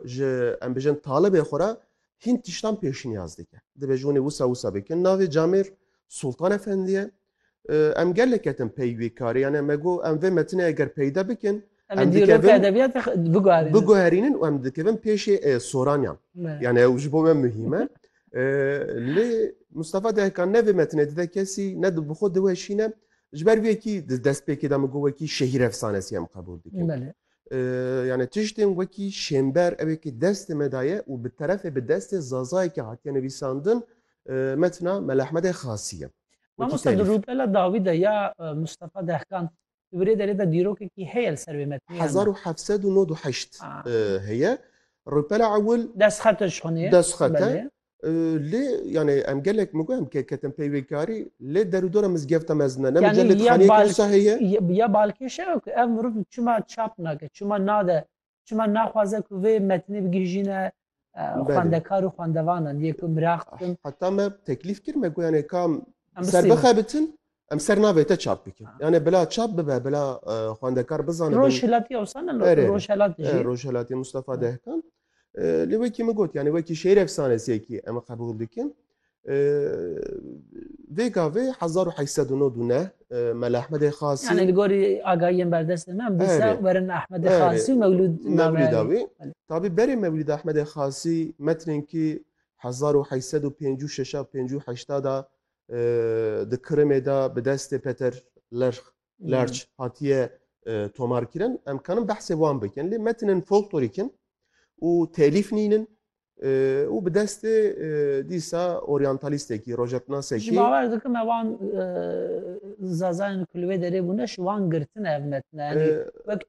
ji em bijin talibê xwe re hîn tiştan pêşniyaz dike. Divê ji winê wisa wisa bikin. Navê Camêr Sultan Efendi ye. Em gelek ketin pey wê karê yani me got em vê metinê eger peyda bikin em dikevin biguherînin û em dikevin pêşê soranyan. Yani ew ji bo me muhîm e. Lê Mustafa Dehkan ne vê metinê dide kesî ne bi xwe diweşîne. Ji ber wê yekî di destpêkê de min got wekî şehîr efsanesî em qebûl dikin. Yani tiştên wekî şênber ew ê ki destê me daye û bi terefê bi destê Zazayekî hatiye nivîsandin metna Melahmedê Xasî ye. Mamosta di rûpela dawî de ya Mustafa Dehkan di wirê derê de dîrokekî heye li ser vê metnê yan na? Hezar û heft sed û nod û heşt heye. Rûpela ewil. Destxet e ji xwe nê. Destxet e. Lê yani em gelek mi em ke ketin peyvêkarî lê derûdora mizgefta mezin ne yani gelek xaniyê kirsa heye ya balkêşe yok ev mirov çima çap nake çima nade çima naxwaze ku vê metnê bigihîjîne xwendekar û xwendevanan yê ku miraq bikin heta me teklîf kir me ku yani kam serbixebitin Em ser navê te çap dikin. Yani bila çap bibe, bila e, xwendekar bizane. Rojhilatî ewsan e, Erê, rojhilatî jî. Rojhilatî Mustafa Dehkan. E, lê wekî min got, yani wekî şêr efsanesekî em qebûl dikin. E, vê gavê 1899 Mel Ahmedê Xasî. Yani li gorî agahiyên berdestê me em dîsa werin Ahmedê Xasî û Mewlûd Mewlîda wî. Tabî berê Mewlîd Ahmedê Xasî metrên kî 1856 58 da Di Kirimê de bi destê Peter Lerch, Lerch hatiye tomarkirin. Em kanin behsê wan bikin. Lê metinên folklorîk in û telîf nînin û bi destê dîsa oryantalîstekî, rojetnasekî. Ji bawer dikim me wan zazayên ku li wê derê bûne ji wan girtine ev metine. Yanî wek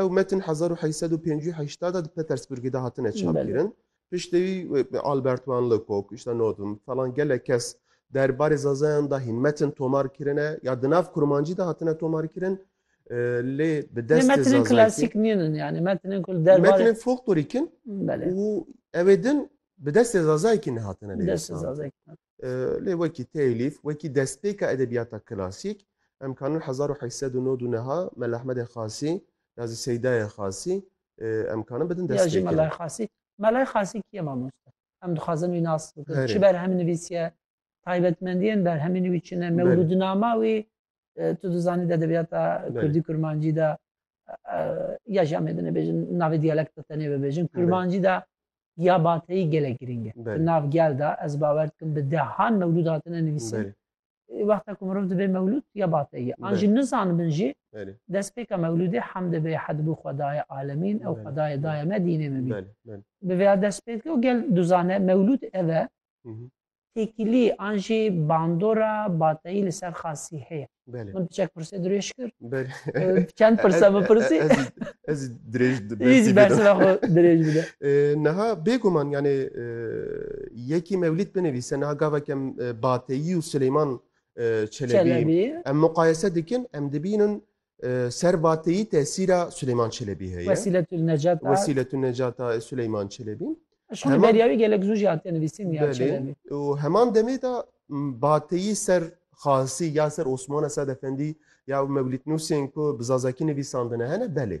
Ew metin hezar û heşt sed û pêncî û heştad a di Petersburgê de hatine çapkirin. Piştî wî wê Albert wan Lecoq, îşte Nodum, falan gelek kes derbarê Zazayan de hîn metin tomar kirine ya di nav kurmancî de hatine tomarkirin lê bi destê Zazayekî. Lê metinên klasîk nîn in yanî metinên ku li derbarê Metinên folklorîk in û ew ê din bi destê Zazayekî nehatine nivîsandin. Lê wekî têlîf, wekî destpêka edebiyata klasîk em kanun hezar û heşt sed û nod û niha Mela Ehmedê Xasî ya zî Seydayê Xasî em kanun bidin destpêkirin. Ya jî Melayê Xasî. Melayê Xasî kî ye mamoste? Em dixwazin wî nas bikin. Çi berhem nivîsiye? Taybetmendiyên berhemê nivî çi ne? Mewludnama wî tu dizanî di edebiyata kurdî kurmancî de ya jî em ê binêbêjin navê diyalekta tenê bibêjin kurmancî de ya bateyî gelek girîng e di nav gel de ez bawer dikim bi dehan mewlûd hatine nivîsin wexta ku mirov dibê mewlûd ya bateyî an jî nizanin bin jî destpêka mewlûdê hemdê bê hedbû xwedayê alemîn ew xwedayê dayê me dînê min bî bi vêya dest pê dike û gel duzane mewlûd ev e têkilî an jî bandora bateyî li ser xasî heye. Belê. Min piçek pirsê dirêj kir. Belê. Çend pirse bipirsî? Ez dirêj Hiç bersîva xwe dirêj bide. Niha bêguman yanê yekî mewlîd binivîse niha gavek em bateyî û Sileyman Çelebî em muqayese dikin em dibînin Servateyî tesîra Suleyman Çelebî heye. Wesîletül Necat a. Wesîletül Necat a Suleyman Çelebî. Ji xwe derya wî gelek zû jî hatiye nivîsîn ya Çelebî. Belê û heman demê de bateyî ser Xasî ya ser Osmana Sad Efendî ya ew mewlîtnûsên ku bi zazakî nivîsandine hene belê.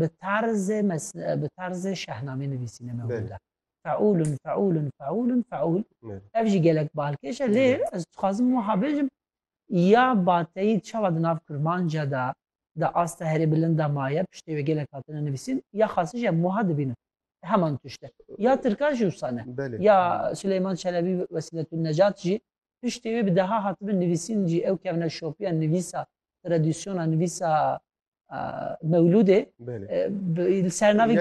bi tarzê bi tarzê şehnamê nivîsîne me hûda feûlun feûlun feûlun feûl ev jî gelek balkêşe lê ez dixwazim wiha bêjim ya bateyî çawa di nav kurmanca da da asta herê bilinda maye piştê wê gelek hatine nivîsîn ya xasî jî em wiha dibînin heman tişte ya tirkan jî wisa ne ya Sileyman Çelebî Wesîletun Necat jî Piştî wê bi deha hatibin nivîsîn jî ew kevne şopiya nivîsa tradisyona nivîsa mewlûdê li ser navê